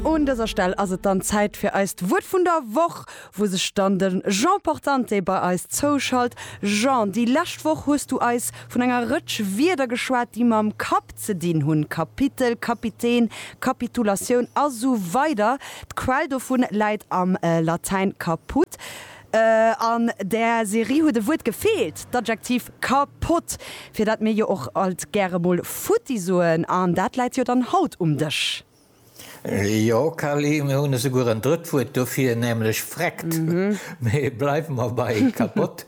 Un dëser Stell ass et dann Zäit fir eist Wuert vun der Woch, wou sech dann de Jean Portante bei eis zouschalt. Jean, déi lescht Woch hues du eis vun enger Rëtsch Wierder geschwat, déi mam Kapp ze dinn hunn, Kapitel, Kapitän, Kapitulatioun a sou weider. D'Quell dovun läit am Latäin caput. An där Serie huet e Wuert gefeelt, d'Adjektiv kapott, fir dat mir jo och alt gäre mol futti soen, an dat läit jo dann haut um Dësch. Jo, Carly, mir hunn esouguer en drëtt Wuert dofir, nämlech vreckt. Mee bleiwe mer bei kapott.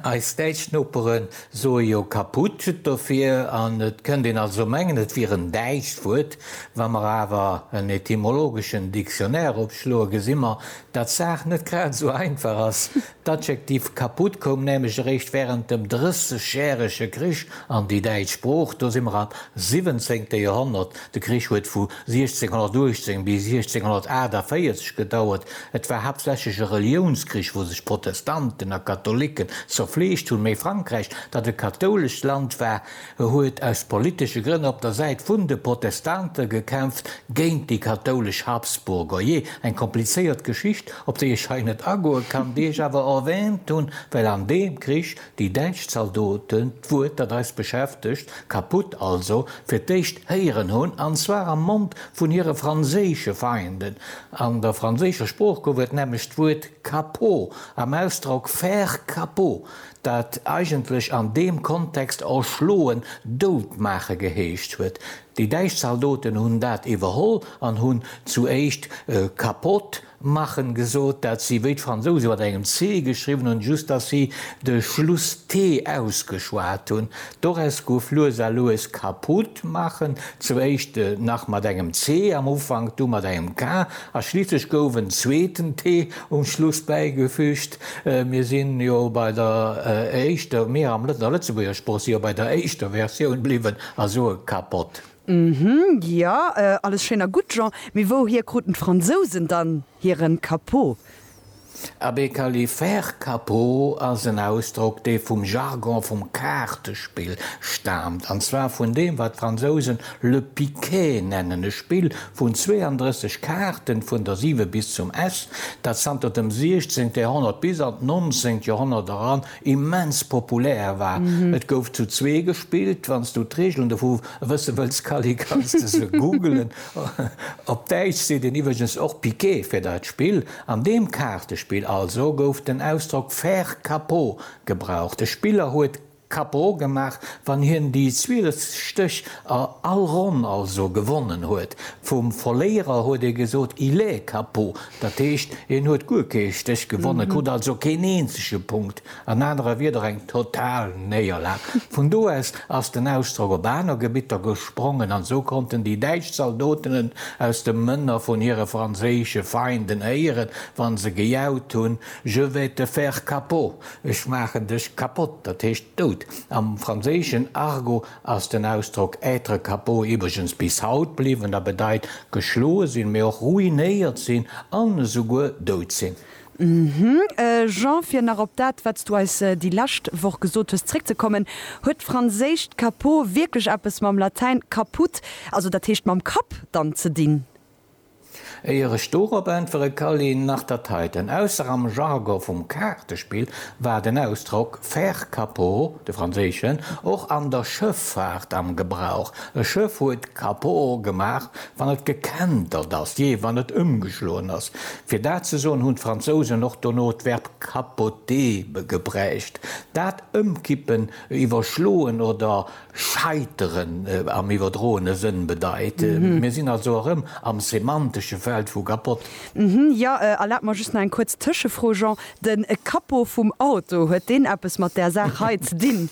Eis däitsch Nopere soe jo kaput dofir, an et kënnt een also mengen, et wier en däitscht Wuert. Wa mer awer en etymologeschen Dictionnaire opschloe gesi mer, Datt d'Saach net grad esou einfach ass, D'Adjektiv kaputt koum nämlech eréischt wärend dem Drëssegjärege Krich an déi däitsch Sprooch, do si mer am siwwenzéngte Joerhonnert, de Krich huet vu 1618 bis 1648 gedauert, et war haaptsächlech e Reliounskrich, wou sech Protestanten a Katholicken zerfleegt hunn, mee Frankräich, dat e kathoulescht Land war, E huet aus politesche Grënn op der Säit vun de Protestante gekämpft, géint déi kathoulesch Habsburger. Jee, eng komplizéiert Geschicht, op déi ech hei net agoe kann, déi ech awer erwäänt hunn, well an deem Krich déi däitsch Zaldoten, d'Wuert, dat eis beschäftegt, kaputt also, fir d'éischt héieren hunn, an zwar am Mond vun hire franséische Feinden. An der franséischer Sprooch gouf et nämlech d'Wuert Capot am Ausdrock faire capot, dat eigentlech an deem Kontext erschloen, dout maache geheescht huet. Déi däitsch Zaldoten hunn dat iwwerholl an hunn zu éischt kapott machen gesot, dat si wéi d'Fransouse mat engem C geschriwwen hunn, just datt si de Schluss T ausgeschwat hunn. Doraus gouf lues a lues kaputt machen, zu éischt nach mat engem C am Ufank, du mat engem K a schliisslech gouf en zweeten T um Schluss bäigefüügt. Mir si jo bei der éischter, mir am Lëtz, a Lëtzebuerger Sprooch, si jo bei der éischter Versioun bliwwen a soe kappott. Hm, jo, alles schéin a gutt, Jean, mee wouhier kruten d'Fransousen dann hiren Capot? Abee, Kally, faire capot ass en Ausdrock, dee vum Jargon vum Kaartespill staamt, an zwar vun deem, wat d'Fransousen Le Piquet nennen e Spill vun 32 Kaarten vun der 7 bis zum S, dat zanter dem 16. Joerhonnert bis an d'nonzéngt Joerhonnert eran immens populär war. Et gouf zu zwee gespillt. Wann s du d'Reegelen dovu wësse wëlls, Kally, kanns de se googelen. Op Däitsch seet een iwwregens och Piquet fir dat Spill. An deem Kaartespill also gouf den Ausdrock faire capot gebraucht. E Spiller huet Cappo gemaach, wann hien déi zwieleft Stéch a all Ronn also gewonnen huet. Vum Verléierer huet ee gesot, il est cappo, dat heescht, hien huet guer kee Stéch gewonnen, krut also keen eenzege Punkt, an anere Wieder eng total Néierlag. Vun do aus ass den Ausdrock op aner Gebitter gesprongen, an esou konnten déi däitsch Zaldotenen aus de Mënner vun hire franséische Feinden héieren, wa se gejaut hunn, Je vais te faire cappo! Ech maachen dech kapott, dat heescht dout. Am franséischen Argot ass den Ausdrock être capot iwwregens bis haut bliwwen a bedeit geschloe sinn, mee och ruinéiert sinn an esouguer dout sinn. Jean, fir nach op dat, wat s du eis déi lescht Woch gesot hues, zréckzekommen, Huet d'franséischt capot wierklech eppes mam Latäin caput, also dat heescht mam Kapp, dann ze dinn? Éier ech dorop äntwere kann een nach dat heiten, ausser am Jargon vum Kaartespill, war den Ausdrock faire capot, de franséischen, och an der Schëffaart am Gebrauch. E Schëff huet capot gemaach, wann et gekentert ass, jee, wann et ëmgeschloen ass. Fir dat ze soen, hunn d'Fransousen och dono d'Verb capoter gebräucht, dat ëmkippen, iwwerschloen oder Scheiteren am iwwerdroene Sënn bedeit. Mir sinn also erëm am semantesche Feld vu kapott. Jo, erlaabt mer just nach eng kuerz Tëschefro, Jean. De Capot vum Auto, huet deen eppes mat där Saach hei ze dinn?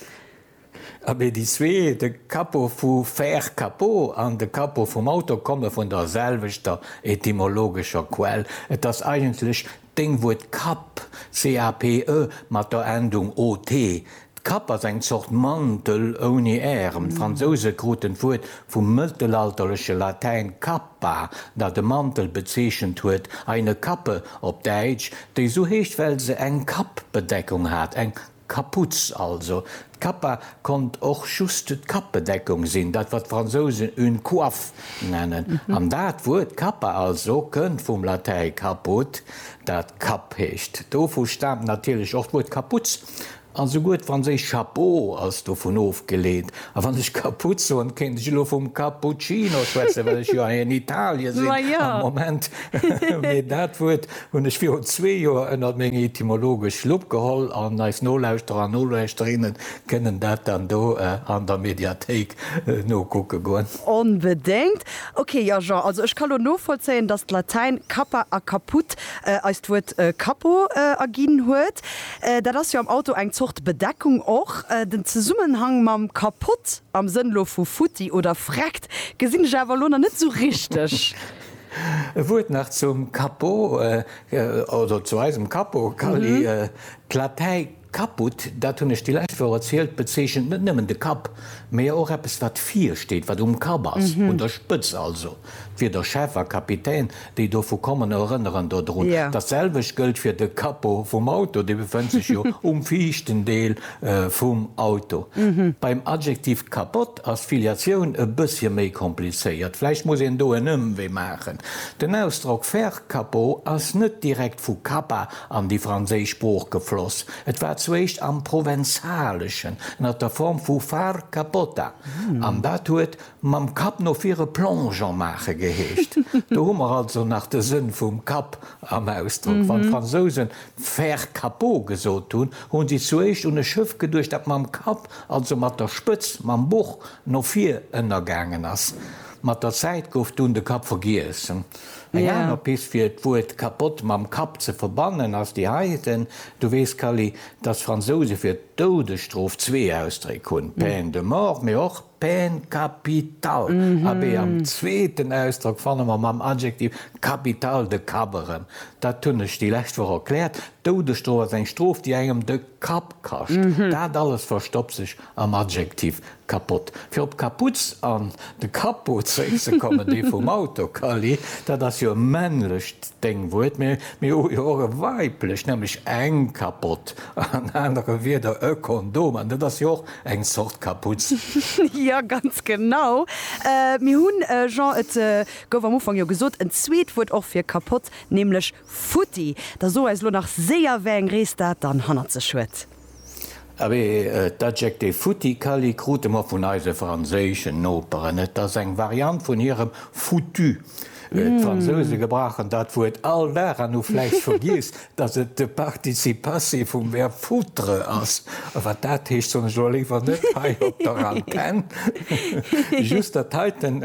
Abee, déi zwee, de Capot vu faire capot an de Capot vum Auto, komme vun der selwechter etymologescher Quell. Et ass eigentlech Deng Wuert Kapp, C-A-P-E, mat der Endung ot. D'Kapp ass eng Zort Mantel ouni Ärem. D'Fransouse kruten d'Wuert vum mëttelalterleche Latäin cappa, dat e Mantel bezeechent huet, eine Kappe op Däitsch, déi sou heescht, well se eng Kappbedeckung hat, eng Kaputz also. D'Kappa konnt och just d'Kapbedeckung sinn, dat wat d'Fransousen une coiffe nennen. An dat Wuert Kappa also kënnt vum Latäi caput, dat Kapp heescht. Dovu staamt natierlech och d'Wuert Kaputz, a souguer d'franséischt chapeau ass dovun ofgeleet. A wann ech Kaputz soen, kéint ech elo vum Cappuccino schwätzen, well ech jo hei an Italie sinn am Moment, mee dat Wuert Hunn ech virun zwee Joer ënnert meng etymologesch Lupp geholl an eis Nolauschterer an Nolauschterinnen kënnen dat dann do an der Mediathéik nokucke goen. Onbedéngt. Ok, jo Jean, also ech ka lo novollzéien, dass d'Latäin cappa a caput eis d'Wuert Cappo erginn huet. Dat ass jo am Auto eng Zort Bedeckung och. Den Zesummenhang mam kapott, am Sënn lo vu futti oder vreckt, gesinn ech awer lo nach net esou richteg. E Wuert nach zum Capo oder zu eisem Capo, Kally. D'Latei caput, dat hunn ech déi lescht Woch erzielt, bezeechent net nëmmen de Kapp, mä jo och eppes, wat vir steet, wat um Kapp ass, un der Spëtz also. D'Wierder Chef a Kapitän, déi dovu kommen, erënneren dodrun. Dat selwecht gëllt fir de Capo vum Auto, dee befënnt sech jo um viischten Deel vum Auto. Beim Adjektiv capot Ass d'Filiatioun e bëssche méi komplizéiert? Vläicht muss een do en Ëmwee maachen. Den Ausdrock faire capot ass net direkt vu Kappa an déi franséisch Sprooch gefloss. Et war zuéischt am Provenzaleschen ënner der Form vu far capota an dat huet mam Kapp no vir e Plongeon maache geheescht. Do hu mer also nach de Sënn vum Kapp am Ausdrock. Wann d'Fransousen faire capot gesot hunn, hu si zuéischt un e Schëff geduecht, dat mam Kapp also mat der Spëtz mam Buch no vir, ënnergaangen ass. Mat der Zäit gouf dunn de Kapp vergiess. Eng aner Pist fir d'Wuert kapott mam Kapp ze verbannen ass déi heiten, Du weess, Kally, datt d'Fransouse fir d'Doudesstrof zwee Ausdréck hunn, peine de mort, mee och peine capitale. Abee, am zweeten Ausdrock fanne mer mam Adjektiv capital de Kapp erëm. Dat hunn ech déi lescht Woch erkläert, D'Doudesstrof ass eng Strof, déi engem de. Kapp kascht, dat alles verstoppt sech am Adjektiv kapott. Fir op d'Kaputz an de Capot zréckzekommen, dee vum Auto Kally, dat ass jo e männlecht Déngwuert, mä mir hu jo och e weiblecht, nämlech eng Kapott, an anere Wieder e Kondom, an dat ass jo och eng Zort Kaputz. Jo, ganz genau. Mir hunn, Jean, et gouf am Ufank jo gesot, en zweet Wuert och fir kapott, nämlech Futti! Da so eis lo nach séier wéi eng Rees dat dann hannert sech huet. Awee, d'Adjektiv futti Kally krute mer vun eise franséischen Noperen. Et ass eng Variant vun hirem foutu. D'Fransouse gebrauchen dat Wuert all Dag an hu vläicht vergiess, dass et de Participe passé vum Verb foutre ass. Wat dat heescht, soen ech elo léiwer net hei op der Antenn. Just dat heiten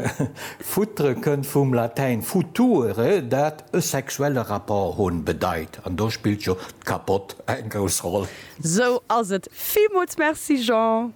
foutre kënnt vum Latäin future, dat E sexuelle Rapport hunn bedeit, an do spillt jo d'Kappott eng grouss Roll. Sou ass et, villmools Merci Jean.